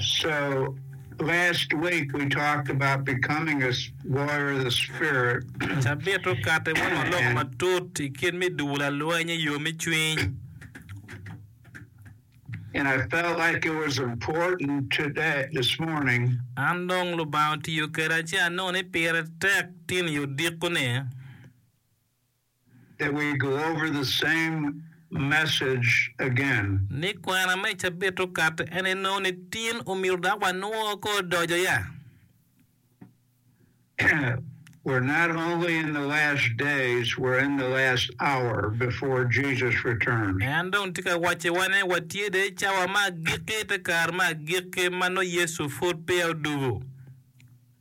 so last week we talked about becoming a warrior of the spirit. Cabit okati wano lok matut i kit me dubu lalweny i yo me cwiny. And I felt like it was important today, this morning. An dong Lubanga otiyo keda ci anongo ni pire tek tin i odiko ni. that we go over the same message again. Ni kwena me cabit okato en enongo ni tin omito dok wanwoo ko odojo ya. We're not only in the last days, we're in the last hour before Jesus returns. En dong tye ka wacci wa ni watye dong i cawa me agikki, te kare me agikki ma nongo Yecu pud peya odugo.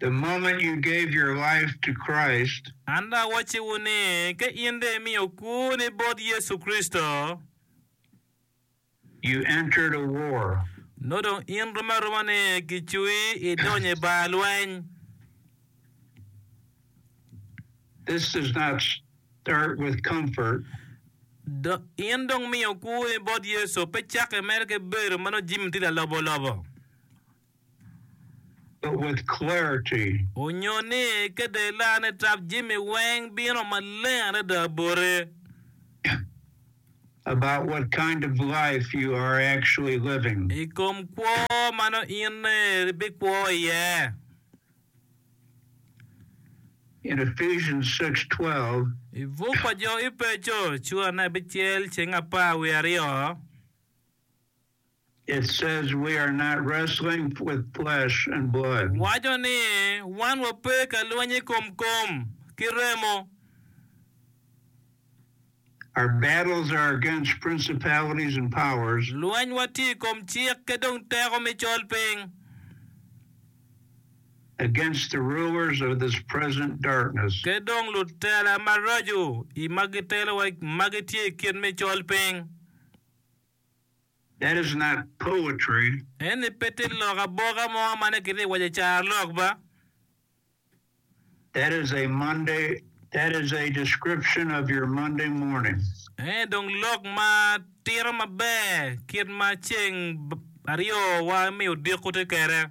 The moment you gave your life to Christ. An dong awacciwu ni, ka in dong imiyo kwoni bot Yecu Kricito. You entered a war. Nongo dong in rom aroma ni kicwi idonyo i bar lweny. This does not start with comfort. Do, in dong imiyo kwoni bot Yecu, pe cako imedo ki bedo ma nongo jami tye lalobolobo. but with clarity. Onyo ni ka dela ni tap jami weng bino maleng adada bote. About what kind of life you are actually living. I kom kwo ma nongo in ni bi kwo iye. In Ephesians 6:12. I buk pa jo Epeco cura ne abicel ceng apar wiye aryo. It says we are not wrestling with flesh and blood. Waco ni wan wape ka lweny i kom kom ki remo. Our battles are against principalities and powers. Lwenywa tye i kom cik ki dong teko me colpiny. Against the rulers of this present darkness. Ki dong lutela maraco i ma gitelowa ma gitye i kit me colpiny. That is not poetry. Eni pe tye lok aboka mo ma nongo kitye ka waco i carolok ba. That is a Monday, that is a description of your Monday morning. Eni dong lok ma tito maber kit ma ceng aryo wa me odiko tye kwede.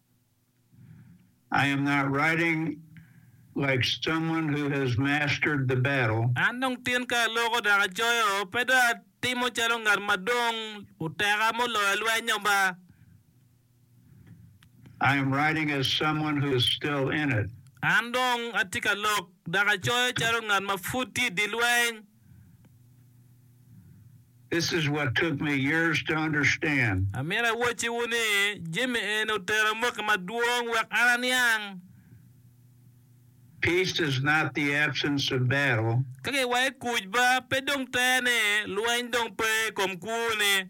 I am not writing like someone who has mastered the battle. An dong tin ka aloko dok acoyo, pe dong atimo calo ngat ma dong oteka muloyo lwenyo ba. I am writing as someone who is still in it. An dong atye ka lok dok acoyo calo ngat ma pud tye i dye lweny. This is what took me years to understand. Amito awacciwu ni, jami eni otera amoki madwong wek an aniang. Peace is not the absence of battle. Ka giwayo kuc ba, pe dong ter ni lweny dong pe i kom kwo-ni.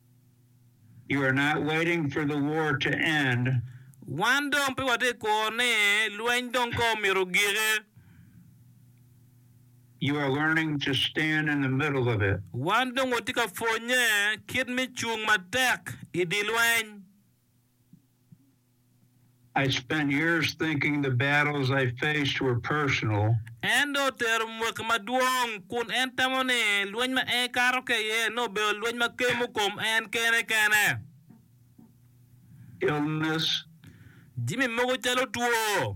You are not waiting for the war to end. Wan dong pe watye ka kuro ni lweny dong kong omyero giki. You are learning to stand in the middle of it. Wan dong watye ka pwonye kit me cung matek i dye lweny. En dong otero mwaki madwong kun en tamo ni lweny ma en kato ki iye nongo obedo lweny ma kemo kom en kene kene. Jami mogo calo two.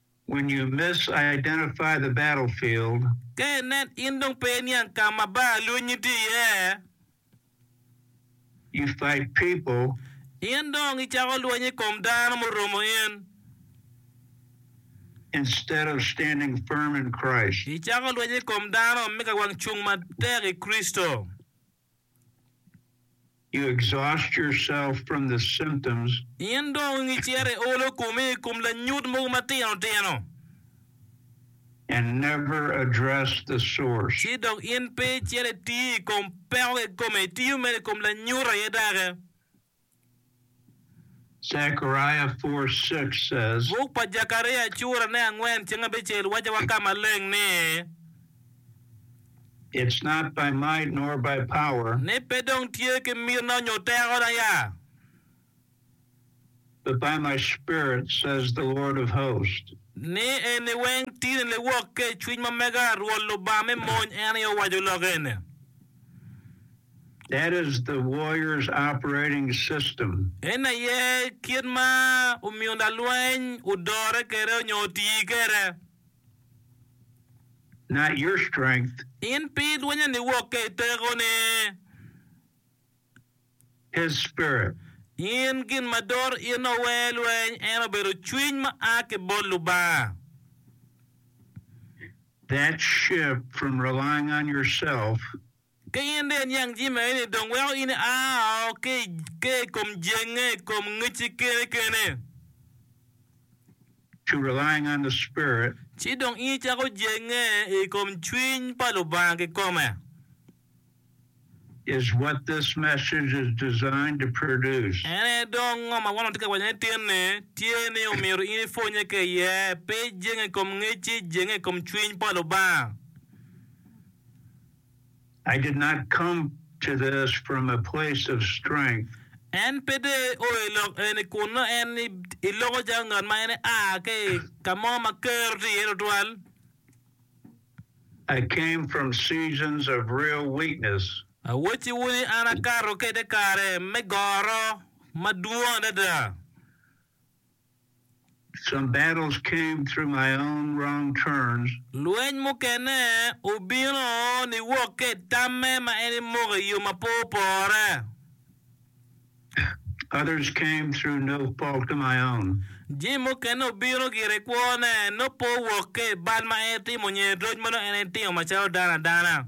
When you misidentify the battlefield. Ka inen in dong pe iniang ka ma bar lweny-nyi tye iye. You fight people. In dong icako lweny i kom dano muromo in. Instead of standing firm in Christ. Icako lweny i kom dano me ka wang cung matek i Kricito. You exhaust yourself from the symptoms. In dong icito iolo komi i kom lanyut mogo matino tino. And never address the source. Ci dong in pe icito itiyo i kom peko kikomi, itiyo mere i kom lanyut aye dake. Zechariah 4 6 says. Buk pa Jekaria cura ne angwen cing abicel waco wa ka maleng ni. It's not by might nor by power. Ni pe dong tye ki miti na onyo teko na ya. But by my spirit says the Lord of hosts. Ni eni weng ti ni liwok ke cwiny ma mega Rwot Lubanga me mony en aye owaco lok eni. That is the warrior's operating system. En aye kit ma omiyo lalweny odore kwede onyo otii kwede. Not your strength. In pe ilwonyo niwok ka i teko ni. His spirit. In gin ma dor in owe lweny en obedo cwiny ma a ki bot Lubanga. That shift from relying on yourself. Ka in dong iniang jami maeni, dong weko in ia oo ki i kom jenge, i kom ngecci kene kene. To relying on the Spirit. Ci dong in icako jenge i kom Cwiny pa Lubanga kikome. Is what this message is designed to produce. En aye dong ngo ma wan watye ka waco ni tinni tye ni omyero in ipwonnye ki iye, pe jenge i kom ngecci, jenge i kom Cwiny pa Lubanga. En pe dong eoyo i lok eni kun nongo en i loko calo ngat ma en ea ki i ka mo ma kero tye iye tutwal. Awacciwu ni an akato ki i te kare me goro madwong adada. Some battles came through my own wrong turns. Lweny mukene obino niwok ka i tamme ma en imoko i yo ma pe opore. Others came through no fault of my own. Jami mukene obino gire i kwone, nop pe owok ka i bal ma en itimo nyo i roc ma nongo en itimo macalo dano adana.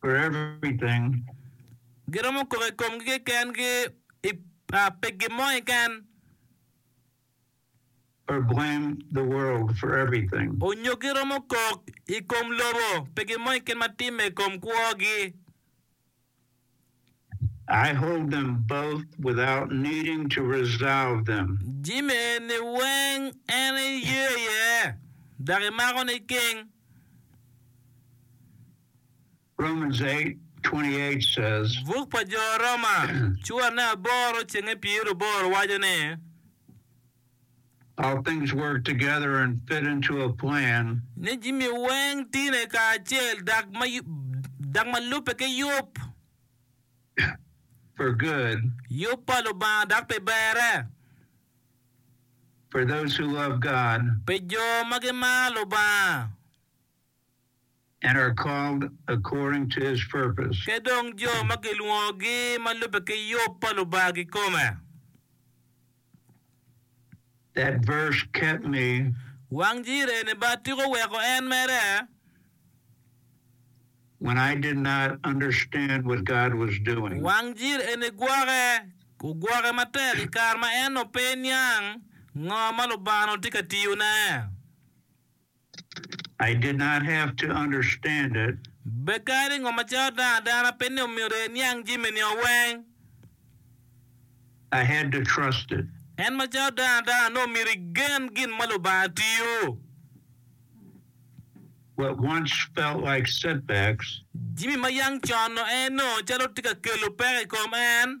for everything. Giromo kok i komgi kekengi i pi gin mo keken. or blame the world for everything. Onyo giromo kok i kom lobo pi gin mo keken ma timme i kom kwogi. I hold them both without needing to resolve them. Jami eni weng en iye iye, dok imako niking. Romans 8:28 says. Buk pa Jo Roma cuane aboro cenge pyeraboro waco ni. All things work together and fit into a plan. Ni jami weng tine kacel dok ma lubbe ki yub. For good. Yub pa Lubanga dok pi berre. For those who love God. Pi jo ma gimaro Lubanga. and are called according to his purpose. Ki dong jo ma gilwongogi ma lubbe ki yub pa Lubanga kikome. That verse kept me. Wang Jireh ni ba tika oweko en mere? When I did not understand what God was doing. Wang Jireh ni gwoke, ogwoke matek i kare ma en onongo pe niang ngo ma Lubanga onongo tye ka tiyone. I did not have to understand it. Be kadi ni ngo macalo dano adana pe ni omyero eniang jami nio weng. I had to trust it. En macalo dano adana nongo myero igen gin ma Lubanga tiyo. What once felt like setbacks. Jami ma yang con-nu en nongo calo tye ka kelo peko i kom en.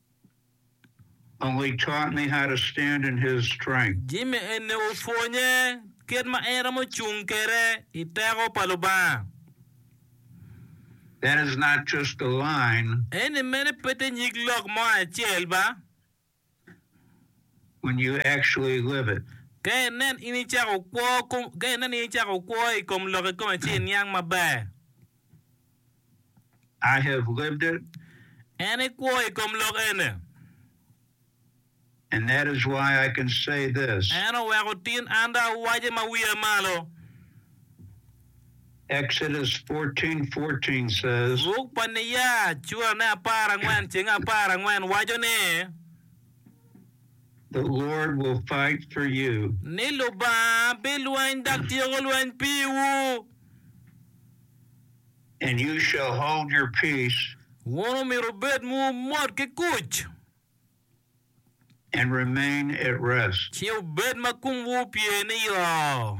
only taught me how to stand in His strength. Jimmy eni opwonye kit ma en romo cung kwede i teko pa Lubanga. That is not just a line. Eni mene pe te nyig lok mo acel ba. When you actually live it. Ka inen in icako kwo, ka inen in icako kwo i kom lok-ki kome ci iniang maber. I have lived it. En ekwo i kom lok ene. And that is why I can say this. En oweko tin an dong awace ma wiya malo. Exodus 14, 14 says. Buk pa Niya, curane apar angwen cenge apar angwen waco ni. The Lord will fight for you. Ni Lubanga bilweny dok tyeko lweny piwu. And you shall hold your peace. Wun omyero wubed mumot ki kuc. And remain at rest. Ci wubed ma kumwu opye niyo.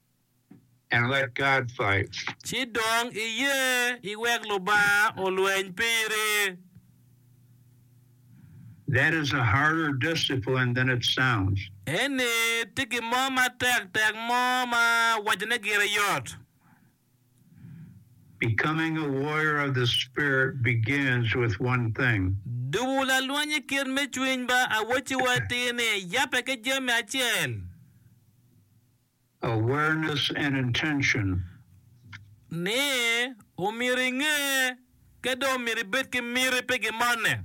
and let God fight. Ci dong iye iwek Lubanga olweny piri. That is a harder discipline than it sounds. Eni tye gin mo matek tek mo ma wacone gire yot. Becoming a warrior of the Spirit begins with one thing. Dubu lalweny i kit me cwiny ba awacciwa atir ni, yabbe ki jami acel. awareness and intention. Ni, omyero inge ka dong omyero ibed ki miti pi gin moni.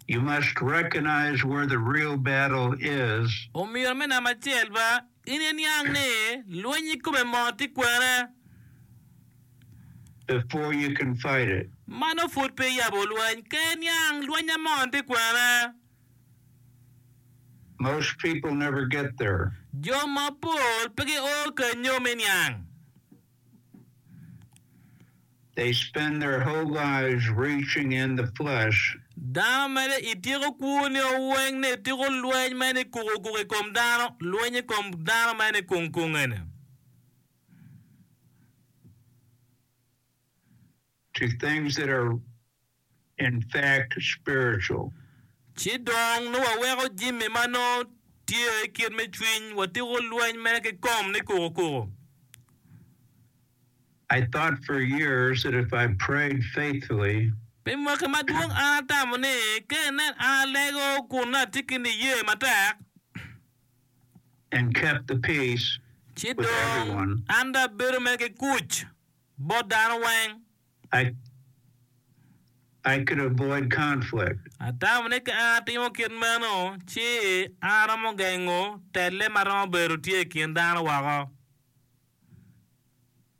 You must recognize where the real battle is. Omyero me namba acel ba, in iniang ni lweny ikome mo tye kwene. Before you can fight it. Mano pud pe iyabo lweny ka iniang lwenya moni tye kwene. Jo mapol pe gio kenyo me niang. Dano mere ityeko kwoni o weng ni tuko lweny me ni kuko kuko ikom dano, lweny ikom dano me ni kung kung eni. to things that are in fact spiritual. Ci dong nongo waweko jami ma nongo tye kit me cwiny watiko lweny me kikom ni kuku kuku. I thought for years that if I prayed faithfully. Pi mwaki madwong an atamo ni ka inen an alego kun nongo atye ki niye matek. And kept the peace with everyone. Ci dong an dong abedo mere ki kuc. bot dano weng. I, I could avoid conflict. Atamo ni ka en atimo kit meno, ci aromo gengo telle ma romo bedo tye i kin dano woko.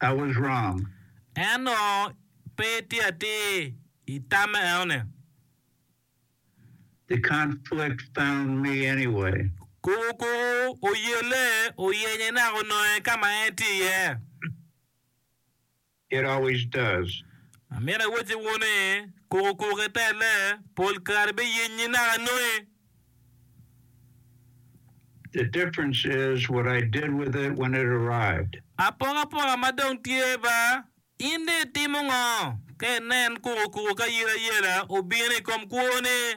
I was wrong. En ongo pe itye atir i tamme enoni. The conflict found me anyway. Kuku kuku oyelle oyenye naka ononge ka ma en tye iye. It always does. Amito awacci wun ni, kuko koko ki telle pol kare biyenyi naka anongi. The difference is what I did with it when it arrived. Apokapoka ma dong tye ba, in dong itimo ngo ka inen kuko koko ki ayerayera obino i kom kwoni?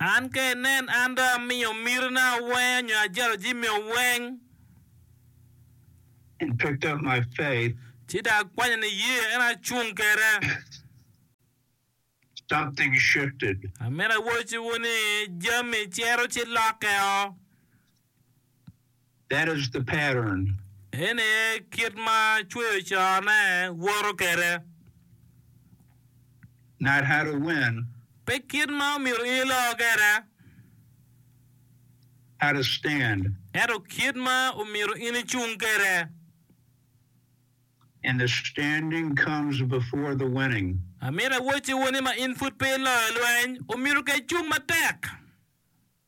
An ka inen an dong amiyo mitina awenga nyo ajalo jami oweng. And picked up my faith. Ci dong akwanyo niye, ento acung kede. Something shifted. Amito awocowu ni jami cito ci lokke o. That is the pattern. Eni aye kit ma cweyo cone woto kwede. Not how to win. Pe kit ma omyero in ilo kwede. How to stand. Ento kit ma omyero in icung kwede. And the standing comes before the winning. Amito awocciwu ni ma in pud pe iloyo lweny, omyero ka icung matek.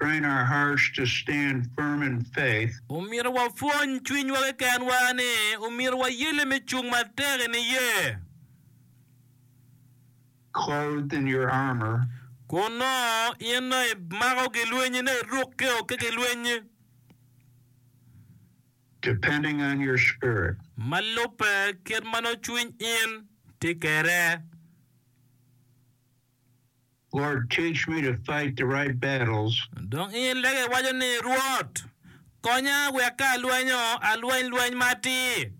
Train our hearts to stand firm in faith. Omyero wapwony cwinywa kekenwa ni omyero wayelle me cung matek i niye. Clothed in your armor. Kun nongo in nongo imako gilwenyi, nongo irukke o ki gilweny. Depending on your spirit. Ma lubbe kit ma nongo cwiny in tye kwede. Lord, teach me to fight the right battles. Dong in lege iwaco ni, Rwot, konya wek ka alwenyo, alweny lweny ma atir.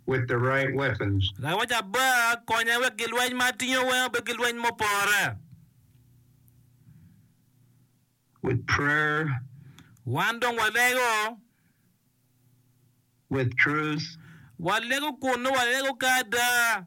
With the right weapons. Lawoc aba, konya wek gilweny ma atingo weng obed gilweny mupore. With prayer. Wan dong walego. With truth. Walego kun nongo walego ka ada.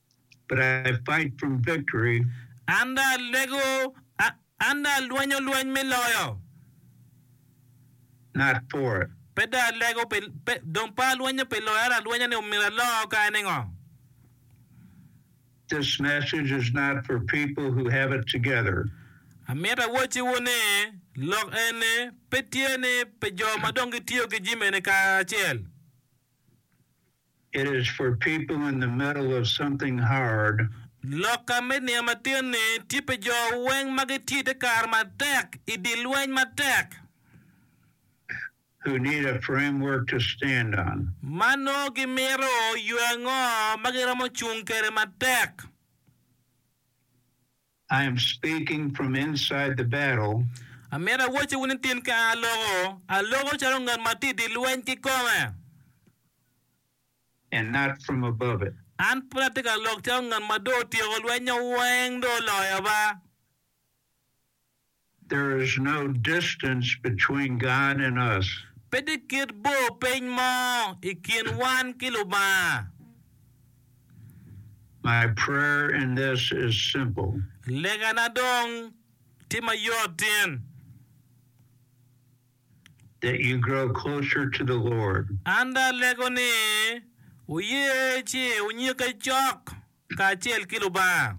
but I fight from victory. An dong alego, an dong alwenyo lweny me loyo. Not for it. Pe dong alego pi, pe, dong pe alwenyo pi loyo, ento alwenyo ni myero alo ka en engo. This message is not for people who have it together. Amito awacciwu ni, lok eni pe tye ni pi jo ma dong gitiyo ki jami eni kacel. It is for people in the middle of something hard. Lokka me niya matin ni tye pi jo weng ma gitye ite kare matek i dye lweny matek. Who need a framework to stand on. Ma nongo gimito yo ango ma giromo cung kede matek. I am speaking from inside the battle. Amyero awacciwu ni tin kare aloko, aloko calo ngat ma tye i dye lweny kikome. And not from above it. An pud atye ka lok calo ngat ma dong otyeko lwenya weng dong oloyo ba. There is no distance between God and us. Pe tye kit bor piny mo i kin wan ki Lubanga. My prayer in this is simple. Legana dong tye ma yottin. That you grow closer to the Lord. An dong alego ni wuye ci wunyikke cok kacel ki Lubanga.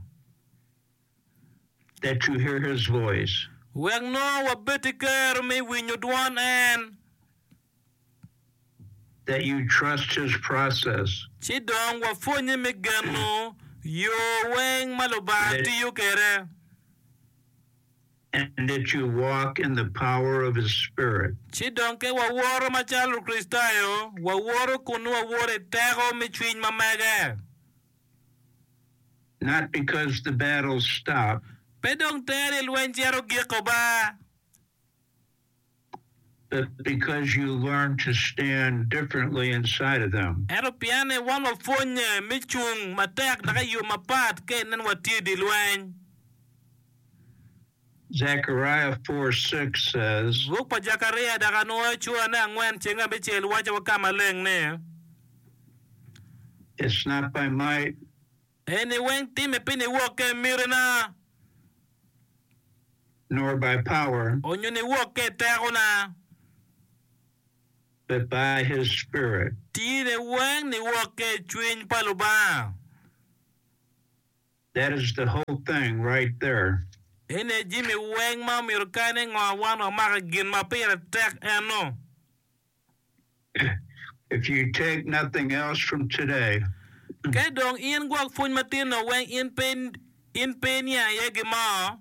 that you hear his voice. Wek nongo wabed ki gero me winyo dwon en. That you trust his process. Ci dong wapwonnye me geno yo weng ma Lubanga tiyo kwede. And that you walk in the power of his spirit. Ci dong ka wawoto macalo Lukricitayo, wawoto kun nongo wawoto i teko me cwiny ma mege. not because the battles stop. Pe dong ter ni lweny cito giko ba. But because you learn to stand differently inside of them. Ento pien ni wan wapwonnye me cung matek dok i yo mapat ka inen watye i dye lweny. Zechariah 4, 6 says. Buk pa Jakaria dok anwoyo cwane angwen ceng abicel waco wa ka maleng ni. It's not by might. Eni weng timme pi niwok ka i mitena. Nor by power. Onyo niwok ka i tekona. But by His Spirit. Tine weng niwok ka i cwiny pa Lubanga. That is the whole thing right there. Ene jami weng ma omyero kany engo wan wamak i gin ma pire tek eno. If you take nothing else from today. Ka dong in gwok pwony matin-no weng in pe iniang iye gin mo.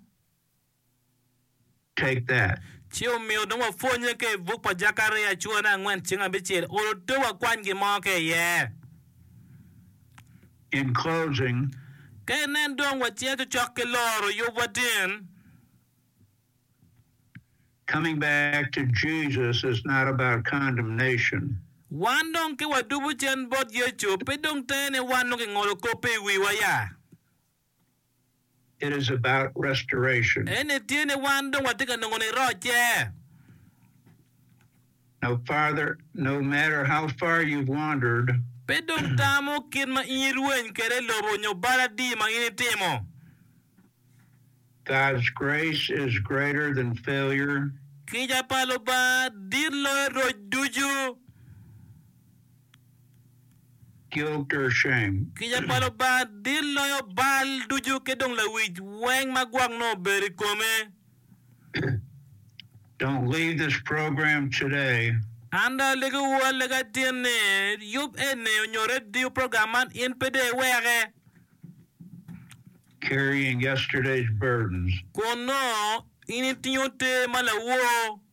Take That! Ci omiyo dong wapwonnye ka i buk pa Jakaria cura me angwen ceng abicel, olo te wakwany gin mo ka iye. In closing. Ka inen dong waciya cocok ki loro yubwa tin. Coming back to Jesus is not about condemnation. Wan dong ki wadubu cen bot Yecu, pe dong tene wan dong kingolo kop pe i wiwa ya. Eni tye ni wan dong watye ka nongo nirocce. Pe dong tamo kit ma in irweny kwede i lobo nyo bal adi ma in itimo, kica pa Lubanga dit loyo roc ducu. killed their shame. Kica pa Lubanga dit loyo bal ducu ki dong lawic weng ma gwok nongo obedo i kome. Don't leave this program today. An dong aligiwu alega atin ni, yub eni onyo radio program man in pe dong iweke. Carrying yesterday's burdens. Kun nongo in itingo te ma lawor.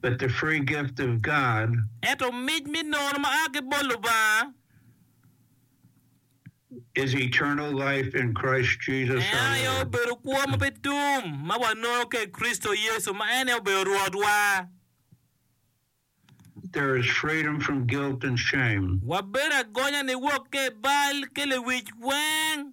but the free gift of God. Ento mic me nono ma a ki bot Lubanga. Is eternal life in Christ Jesus our Lord. En aye obedo kwo ma pe tum ma wanono ka i Kricito Yecu ma en aye obedo Rwotwa. There is freedom from guilt and shame. Wabedo agonya niwok ka i bal ki lewic weng.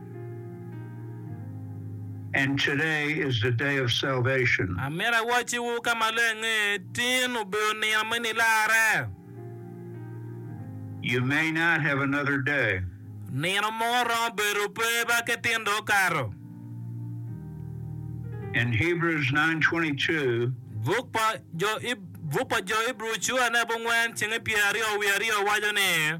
And today is the day of salvation. Amito awacciwu ka maleng ni, tin obedo nino me nilarre. You may not have another day. Nino mo romo bedo pe ba ki tin dong okato. And Hebrews 9:22. Buk pa Jo Ibru cua ne abongwen cenge pyer aryo wiye aryo waco ni.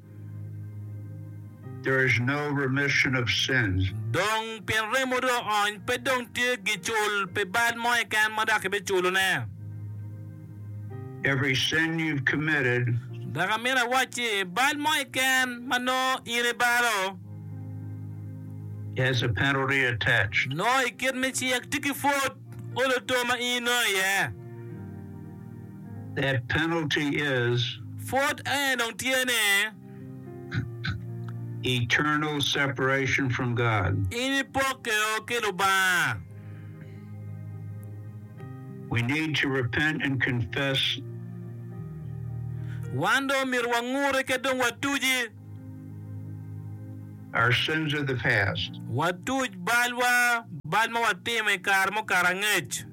Dong pien remo dong oony, pe dong tye gicul pi bal mo keken ma dok ibiculone. Dok amito awac ci, bal mo keken ma nongo in ibalo, nongo i kit me cik tye ki pwod olo to ma in inongo iye. That penalty is. Pwod aye dong tye ne. Eternal separation from God. In ipokke o ki Lubanga. We need to repent and confess. Wan dong omyero wangur eka dong watuji. Our sins of the past. Watuj balwa, bal ma watimo i kare mukato angec.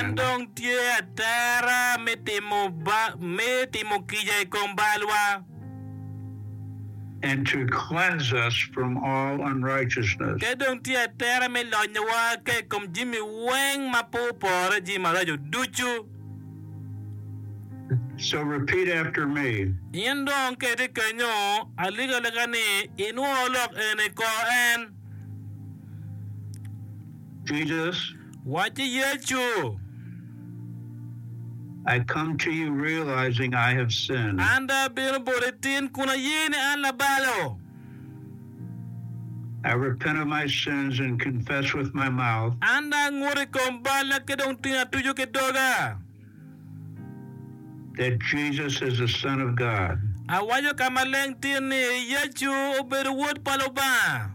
En dong tye atera me timo kica i kom balwa. Te dong tye atera me lonyowa ka i kom jami weng ma pe opore, jami maraco ducu. In dong keti kenyo alikalika ni inwor lok eni kor en. Wacci Yecu, An dong abino boti tin kun aye ni an labalo. I repent of my sins and confess with my mouth. An angut i kom balla ki dong tung atuco ki doga. That Jesus is the Son of God. Awaco ka maleng tir ni Yecu obedo Wod pa Lubanga.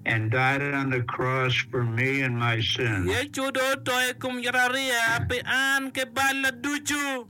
And died on the cross for me and my sins. Yecu dong oto i kom yatariya pi an ki balla ducu.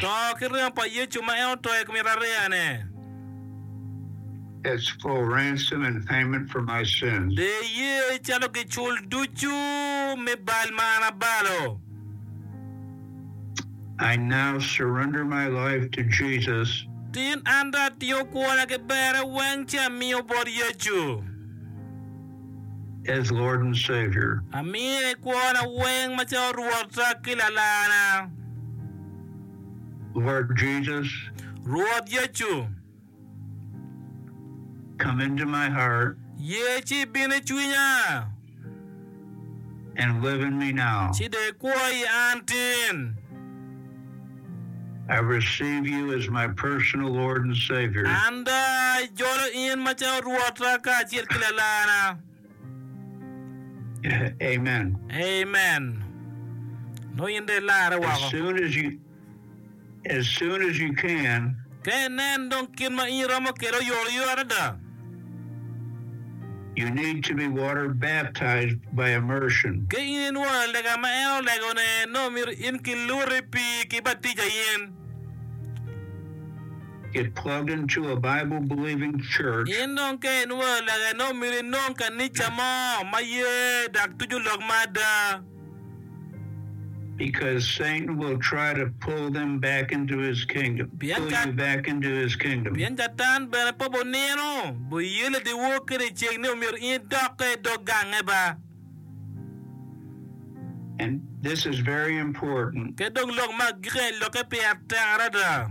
To ki ringo pa Yecu ma en oto i kom Irareyane. De iye calo gicul ducu me bal ma an abalo. Tin an dong atingo kwona ki berre weng ci amiyo bot Yecu. as Lord and Savior. Amiyo i kwona weng macalo Rwota ki Lalana. Lord Jesus. Rwot Yecu. Come into my heart. Ye ci ibin i cwinya. And live in me now. Ci dong ikwo i an tin. An daa ajolo in macalo Rwota kacel ki Lalarna. Amen. Nongo in dong ilarre woko. Ka inen dong kit ma in iromo kwede oyotoyot adada. You need to be water baptized by immersion. Ka in inwoyo lega ma en olegone, nongo myero in ki Lute i pii ki batija yen. Get plugged into a Bible believing church. In dong ka inwoyo lega, nongo myero inong kanica mo ma ye dok tuco lok ma ada. Pien Catan bene pabo nino, boye ladiwo kede i ceng ni omyero in idokke i dog gange ba. Ket dong lok ma agikki eni lokke pire tek adada.